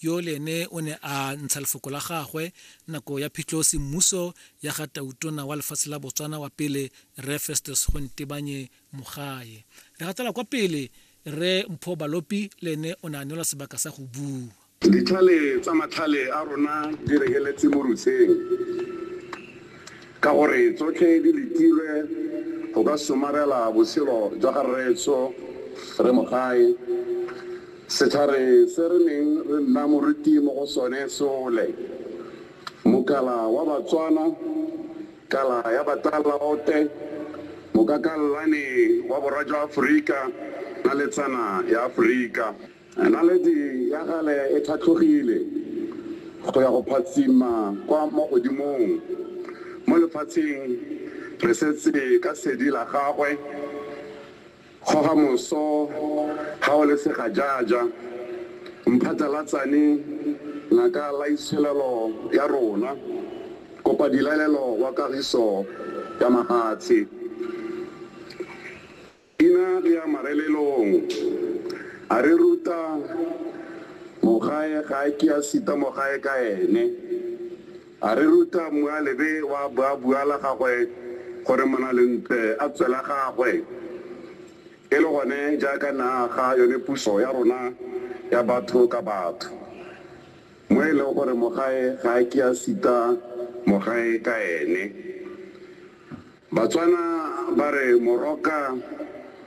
yo le ene o ne a ntsha lefoko la gagwe nako ya phitlho semmuso ya ga tautona wa lefatshe la botswana wa pele re festus go ntebanye mogae re gatela kwa pele re mpho balopi le ene o ne a neelwa sebaka sa go bua ditlhale tsa matlhale a rona di regeletse mo rutsheng Ka gore tsotlhe di letilwe go ka somarela botshelo jwa ga rreetsho re mogae, setlhare se re neng re nna moruti mo go sone sole, mokala wa Batswana, kala ya Batalaote, mokakallane wa borwa jwa Aforika na letsana ya Aforika. Naledi ya gale e tlhatlhogile go ya go phatsima kwa mo godimong mo lefatsheng, re setse ka sedi la gagwe, kgoga moso ga o le segajaja, mphatlalatsane ngaka laitsholelo ya rona, kopa dilalelo wa kagiso ya mahatshe. Ina re ya marelelong, a re ruta mogae ga a ke a sita mogae ka ene, a re ruta Mmualebe wa Buabua la gagwe gore Monalentle a tswe la gagwe, e le gone jaaka ne a aga yone puso ya rona ya batho ka batho, mo e leng gore mogae ga a ke a sita mogae ka ene. Batswana ba re moroka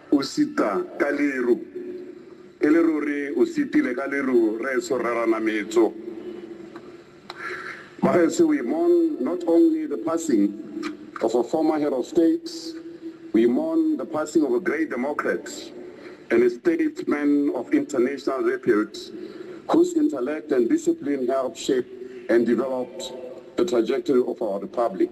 o sita ka leru. E le ruri o sitile ka leru rraetsho Rre Ranametso. Bagaetsho we mourn not only the passing of a former head of state, we mourn the passing of a great democrat and a statesman of international repute whose intellect and discipline helped shape and developed the trajectory of our republic.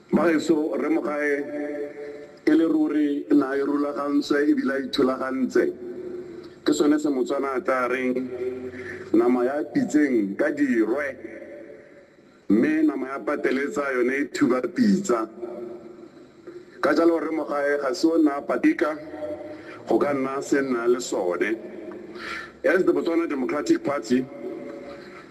Bagaetsho, Rre Mogae e le ruri na a irulagantswe e bile a ithulagantse. Ke sone se Motswana a tlaa reng, Nama ya pitseng ka dirwe, mme nama ya pateletsa yone e thuba pitsa. Ka jalo Rre Mogae ga se o nna a patika go ka nna se nna le sone. As the Botswana Democratic Party,